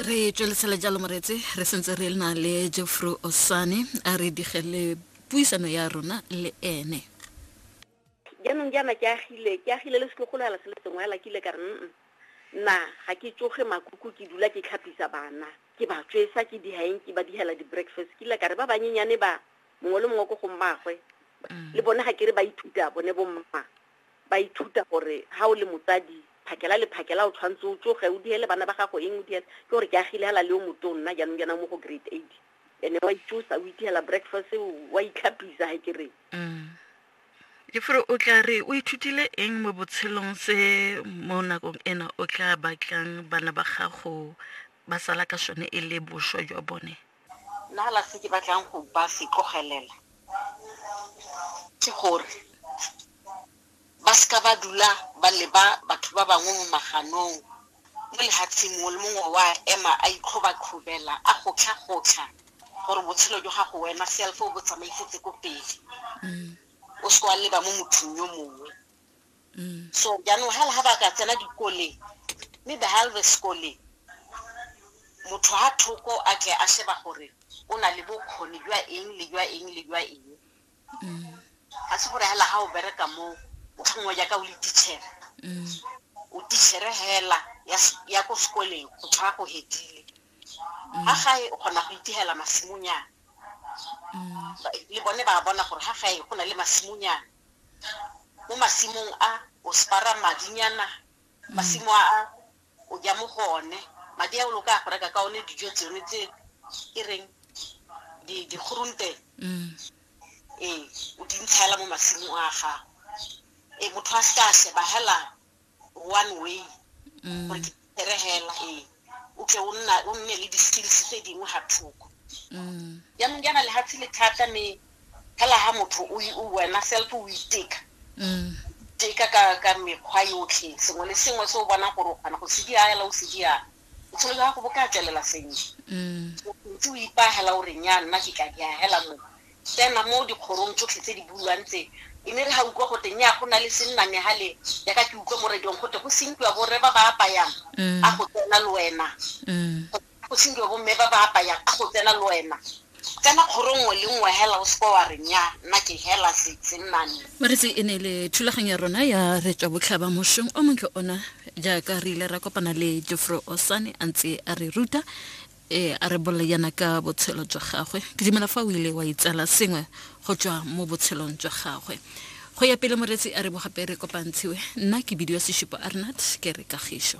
re tswelesela jalo moretse re sentse re na le jeffrey osane a re digele puisano ya rona le ene jaanong jaana ke agile ke agile le setlogolo ala se le sengwe ala kile ka re nna ga ke tsoge makuku ke dula ke tlhapisa bana ke ba tswesa ke dihaeng ke ba dihela di-breakfast kile ka re ba banyenyane ba mongwe le mongwe ko go mmagwe mm. le bone ga ke re ba ithuta bone bomma ba ithuta gore ha o le motsadi phakela le phakela o tshwanetse o tsoge o diele bana ba gago eng o diele ke gore ke agile hela le o moto nna jaanong jana mo go grade eight ene wa itsosa o itiela breakfast wa itlhapisa ga ke reng mm. le fore o tla re o ithutile eng mo botshelong se mo nakong ena o tla batlang bana ba gago ba sala ka sone e le boswa jwa bone Nna fela se ke batlang go ba se tlogelela ke gore ba seka ba dula ba leba batho ba bangwe mo maganong mo lehatsheng mongwe le mongwe wa ema a itlhobatlhobela a gotlha-gotlha gore botshelo jwa gago wena self o bo tsamaisetse ko pele o se wa leba mo mothong yo mongwe so jaanong ga ga ba ka tsena dikoleng mme ba ga le sekoleng motho ga thoko a tle a sheba gore o na le bokgoni jwa eng le jwa eng le jwa eng ga se gore fela ga o bereka mo o tlhongwa jaaka o le tichere o tichere fela ya ko sekoleng go tshwara go hedile ga gae o kgona go itigela masimonyana le bone ba bona gore ga gae go na le masimonyana mo masimong a o spara madinyana masimo a a o ja mo go one madi a o lo ka go reka ka one dijo tsone tse e reng dikgorunte mm. ee o di ntshela mo masimong a gago ee motho a se ka sheba hela one way mm. gore ke phere hela ee o tle o nna o nne le di-skills tse dingwe ga thoko mm. jaanong jaana lefatshe le thata me fela ga motho wena self o iteka mm. teka ka ka mekgwa yotlhe sengwe le sengwe se o bonang gore o kgona go se dia ela o se dia botshelo jwa gago bo ka tswelela sentle ntse o ipaagela o reng ya nna ke ka diagela mo tsena mo dikgorong tsotlhe tse di buiwang tse. E ne e re ha utlwa gote, nnyaa go na le sennane hale, yaka ke utlwa mo radiong gote go sinkiwa borre ba ba apayang, a go tsena le wena. Go sinkiwa bomme ba ba apayang, a go tsena le wena. Tsena kgoro nngwe le nngwe hela o seke wa re nnyaa, nna ke hela se, sennane. Moretsi, e ne e le thulaganyo ya rona ya re tswa botlhaba mosheng o montle ona, jaaka re ile ra kopana le Jofro Osane a ntse a re ruta. ee a re bolela yana ka botshelo jwa gagwe ke dumela fa o ile wa itsala sengwe go tswa mo botshelong jwa gagwe go ya pele moretsi a re bogape re kopantshiwe nna ke bidio seshupo arnat ke re kagišo